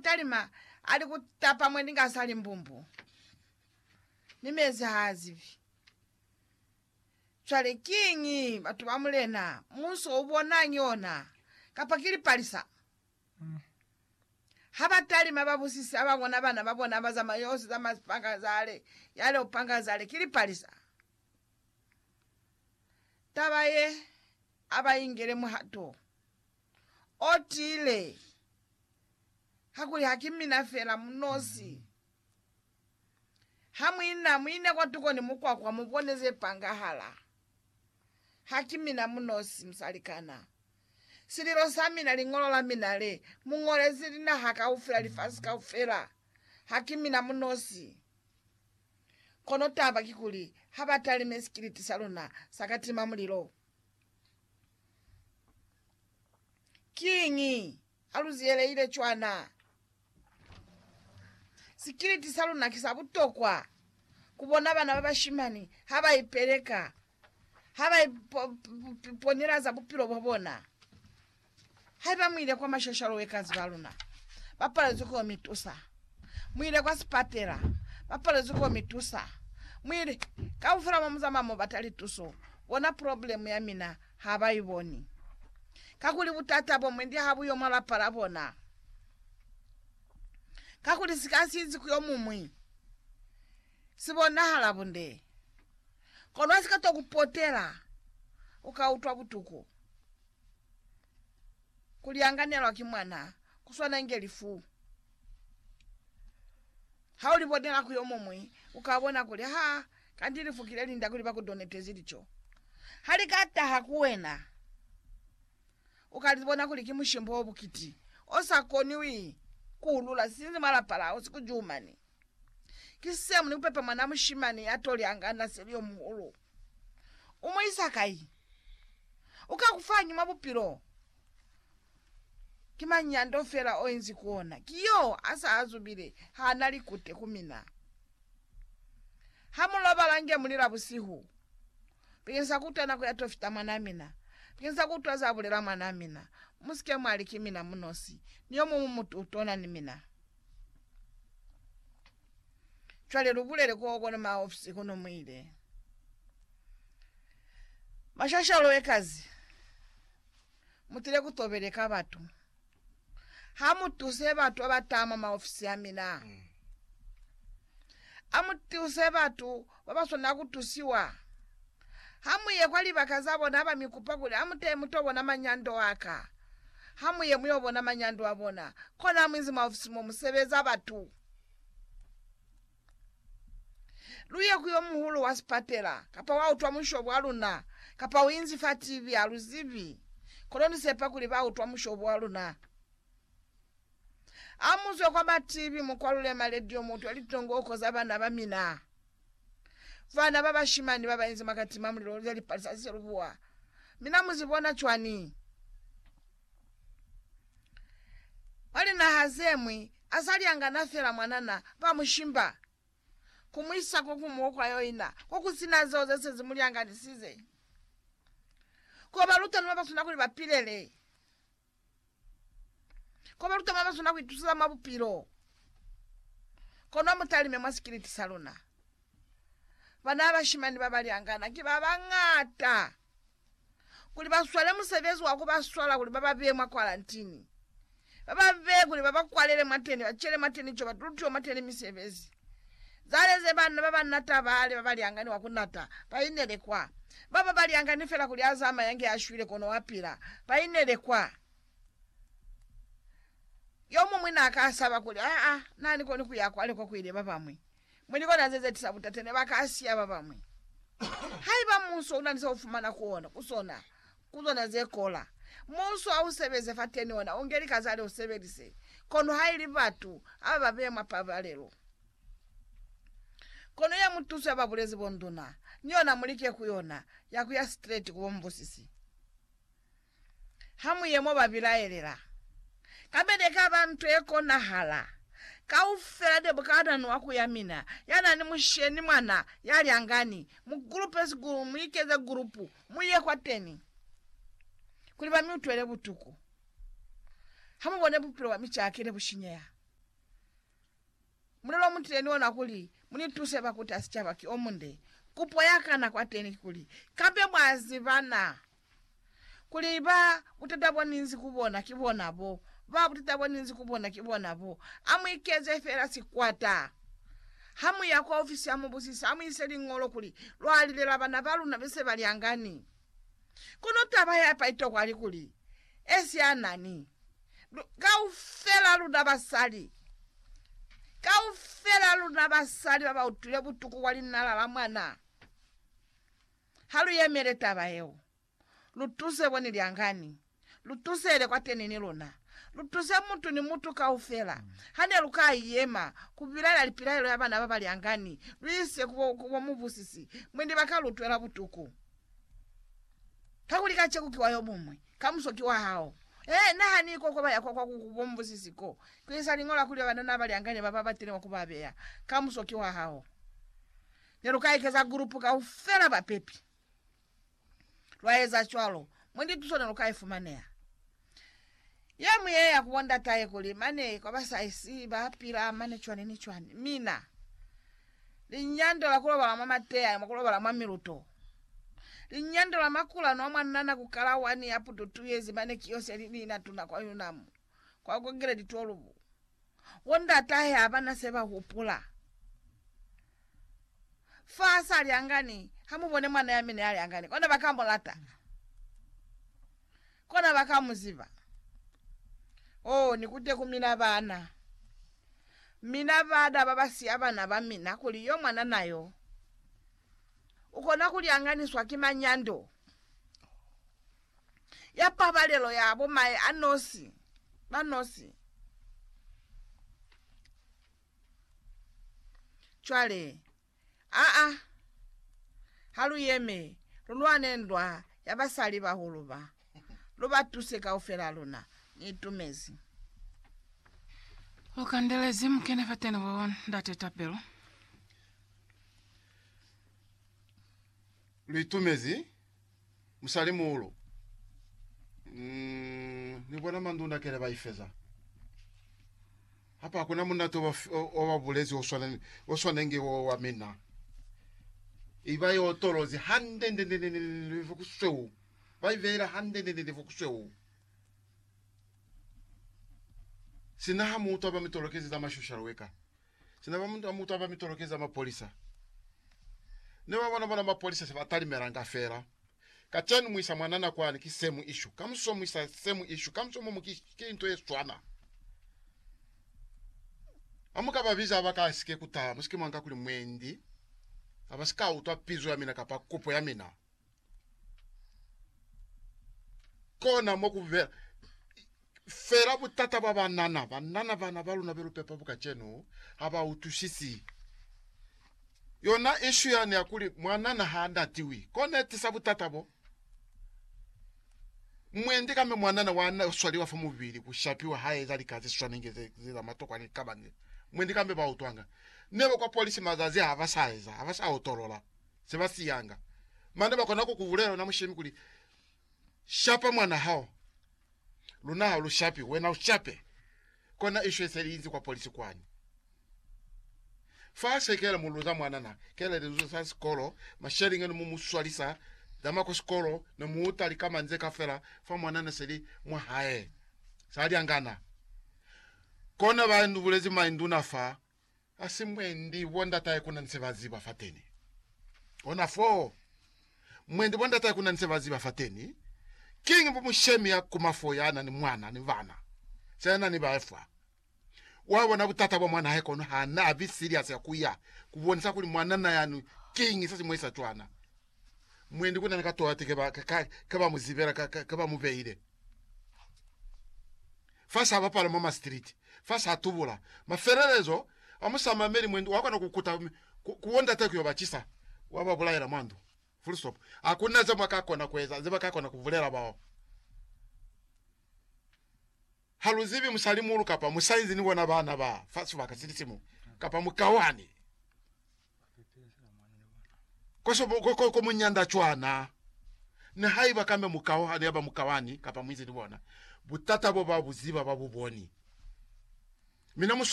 Talima ali ku tapa mwendi nga sa li mbumbu, mi mezi ha a zibi. Cwale kiñi batu ba Mulena, Muso u bonañi ona, kapa ki lipalisa? Ha ba talima ba busisi ha ba bona bana ba bona ba zama yosi zama sipanga zale, yale upanga zale, ki lipalisa. Taba ye a ba ingele muhato. O tile, Kakuli haki mina fela mu nosi. Ha mu ina, mu ine kwatuko ni mukwakwa mu bone ze pangahala. Haki mina mu nosi, musalikana. Sililo sa mina, liñolo la mina le mu ñolezi linaha kaufela, lifasi kaufela, haki mina mu nosi. Kono taba kikuli, ha ba talime sikiliti sa luna sa katima mulilo. Kiñi haluziyeleile cwana? Sikiliti saluna ki sa butokwa kubona bana babashimani habaipeleka, habaiponilaza bupilo bwabona. Haiba muile kwa mashashalo wekazi baluna bapalezwi ko mitusa, muile kwa sipatela bapalezwi ko mitusa, muile kaufela mo muzamaya mobata lituso, bona problem ya mina habaiboni. Kakuli butata bo mwendi habuyo mwa lapa la bona. Kakuli sika sizi ku yomumwi sibonahala bunde, kono hasikato kupotela ukautwa butuku. Kulianganelwa ki mwana kuswana inge lifu. Haulibonela ku yomuñwi, ukabona kuli, Ha, kanti lifu ki lelinda kuli bakudonetezi lico. Halikataha ku wena, ukalibona kuli ki mushimbo obukiti, osakoniwi kuulula sinzi mwa lapa lao sikujumani. Ki sisemu ni kupepa mwana mushimani ya toli angana seli yo muhulu. U mu isa kai? U ka ku fañi mwa bupilo? Ki mañi ya ndo fela o inzi ku ona? Ki yo a sa azubile, ha na likute ku mina. Ha mu lobala nge mu lila busihu, Bikeng sa ku utwa nako ya to fita mwanaa mina, bikeng sa ku utwa za bulela mwanaa mina, mu si ke mwa li ki mina munosi, ni yo muñwi mutu u tona ni mina. Cwale lubulele ko kona ma ofisi kono mwile. Mashashalo ekazi. Mutile kutobele ka batu. Hamutuse batu abatama ma ofisi amina. Mm. Amutuse batu babaswanela kutusiwa. Hamuye kwa libaka zabona abamikupa kuli amutee mutobona manyando aka, hamuye muyobona manyando abona, kona hamuinzi mwa ofisi momusebeza batu. Luye ku yomuhulu wa sipatela, kapa wautwa mushobo waluna, kapa uinzi fa TV, aluzibi. Kono nisepa kuli bautwa mushobo waluna. Amuzwe kwa batibi, mukwalule maledio, mutwe litongoko za bana bamina. Bana babashimani babainzi mwa katima mulilo lulya lipali sa siselubuwa, mina muzibona cwani? Mwa linaha zemwi, asalyangana fela mwanana, bamushimba, kumuisa kokumuo kwa yoina, kokusina zeo zese zimulyanganisize, kobaluta noba baswana kuli bapilele. Ko baluta ba bazunda ku ituseza mwa bupilo. Kono mu talime mwa sikiliti sa luna. Bana ba bashimani ba balyangana ki ba bañata kuli ba swale musebezi wa ku ba swala kuli ba ba beye mwa kwarantini, ba ba beye kuli ba ba kwalele mwateni, ba cele mwateni co, ba tulutiwe mwateni misebezi. Zaleze banna ba ba nata bale ba baliangani wa ku nata. Ba inele kwa. Ba ba baliangani fela kuli a zamaya nge a shwile kono wa pila. Ba inele kwa. Yomuñwi na ka saba kuli, Aa, na ni koni ku ya kwale ko ku ile ba bamwi. Mwi likona ze ze tisa butate ne ba ka siya ba bamwi. Haiba munso una ni se u fumana ku ona, ku sona, Ku zona ze kola. Muuso ha u sebeze fateni ona u nge lika za leo sebelise, kono ha ili batu aba ba beya mwa pabalelo. Kono ya mutuso ya ba bulezi bonduna, ni ona mu like ku yona, ya ku ya straight ku bo mubusisi. Ha mu ye mo ba bilaelela. Kabede e ka ba nto ye konahala. Kaufela debukanani wa ku ya mina, ya na ni musheni mwana, ya lyangani, mu groupe sikulu, mu ikeze group, Mu ye kwateni kuli ba mi utwele butuku, ha mu bone bupilo bwa mi caki ne bu shinyeha. Mulelo o mutile ni ona kuli mu ni tuse ba kuta sicaba ki o munde. Kupo ya ka na kwateni kikuli, Kabe mwa ziba na kuli ba butata bo ni nzi ku bona ki bona bo? Ba butata bo ni nzi ku bona ki bona bo. A mu ikeze fela sikwata. Ha mu ya kwa ofisi ya mubusisi, ha mu ise liñolo kuli lwa lilela bana ba luna be se ba lyangani. Kono taba ya pa itokwa li kuli, esianani. Lu, kaufela luna basali, kaufela luna basali ba ba utwile butuku kwa linala la mwana, ha lu yemele taba yeo. Lutuse bo ni lyangani. Lutusele kwateni ni luna. Lutuse mutu ni mutu kaufela. Hane lu ka yema ku bilaela lipilaelo ya bana baba lyangani, lu ise ku bo, ku bo mubusisi, mwendi ba ka lu twela butuku. Kakuli kaceku ki wa yo mumwi, kamuso ki wa hao. Ee, nahani ko, ko ba ya kwa, kwa ku, ku bo mubusisi ko, ku isa liñola kuli banana ba lyangani ba ba batelengwa ku ba beya, kamuso ki wa hao. Ne lu ka ikeza gulupu kaufela bapepi. lwa eza cwalo, mo ndi tuso ne lu ka ifumaneha. Ye mu ye ya ku bo ndatahe kuli mane kwa ba sa isi ba pila mane cwani ni cwani. Mina, linyando la ku lobala mwa mateya, mwa ku lobala mwa miluto, linyando la makulanu a mwa nana ku kala wani ya putu tu yezi mane ki yo se li ni na tuna kwa Yunam, kwa Kongeledi 12. Bo ndatahe ha ba na se ba hupula. Fa sa li angani, ha mu bone mwana ya mina ya li angani, kona ba ka mu lata. Kona ba ka mu ziba. Oh, ni kute ku mina baana. Mina baada ba ba siya bana ba mina kuli yo mwanana yo u kona ku lyanganiswa ki manyando ya pabalelo ya bo mae a nosi, ba nosi. Cwale, aa, ha lu yeme, lu lwane ndwa ya basali bahulu ba. Lu ba tuse kaufela luna. Ni itumezi. Lu kandelezi mukene fateni bo Ndate tapelo. Lu itumezi. musalimuulu mm, ni bona manduna kele ba ifeza hapa hakuna munate wa ba bulezi o swana o swanenge wo wa mina iba yo tolozi hande nde nde nde nde kusweu ba ivela hande nde nde nde kusweu sina ha mutu aba mitolokezi za mashushalo weka Sina ba mutwa mutwa ba mitoloke za mapolisa ne ba bona bona mapolisa se ba talimelanga fela. Kacenu mu isa mwanana kwani ki same issue. Kamuso mu isa same issue. Kamuso momo ki, ki into ye swana. Amuka ba biza ba ka sike kutaha musike mwanga kuli mwendi abasika utwa pizo ya mina kapa kopo ya mina. Kona mo ku be fela butata bwa banana. Banana bana ba luna be lu pepa bu kacenu ha ba utwisisi yona ishu yani ya kuli mwanana ha ndatiwi. Kona e tisa butata bo. Mwendi kamba mwanana wa na swaliwa fa mubili ku shapiwa ha eza lika ze swanenge ze ze za matokwa ni kabani. Mwendi kamba ba utwanga. Ne ba kwa polisi mazazi ha ba sa eza, ha ba sa otolola. se ba siyanga. Mane ba kona ku ku bulela wena mushemi kuli, Shapa mwana hao. Luna ha lu shapi, wena u shape. Kona isho ise liinzi kwa polisi kwani. Fa se kela muluza mwana na kela lizuzo sa sikolo, mashelinga ni mu mu swalisa zama kwa sikolo, ni mu uta likama nze ka fela fa mwana na seli mwa hae. Sa lyangana. Kona ba nu bulezi mainduna fa Hasi mwendi bo ndatahe kuna ni se ba ziba fateni. Ona foo, mwendi bo ndatahe kuna ni se ba ziba fateni, kiñi bo mushemi ya kuma foo ya na ni mwana ni bana, sina na ni bahe fa. Wa bona butata bwa mwanahe kono ha na bi serious ya ku ya ku bonisa kuli mwanana yani kiñi se si mu isa cwana. Mwendi kuna ni ka tola ti ke ba, ke, ke ba mu zibela, ke, ke ba mu behile. fa sa bapala mwa masitiliti, fa sa tubula. Mafelelezo a musamameli mwendi wa kona ku kuta ku, ku bondate ku yo ba cisa, wa ba bulaela mwa ndu. Full stop. Ha ku na ze mwa ka kona ku eza, ze ba ka kona ku bulela bao. Ha lu zibi musalimuulu kapa musainzi ni bona bana ba fa sibaka sili simu, kapa mukauhani. Ko muñanda cwana, nihaiba kambe mukao hane yaba mukawani kapa muizi ni bona, butata bo ba bu ziba, ba bu boni. Mi na mu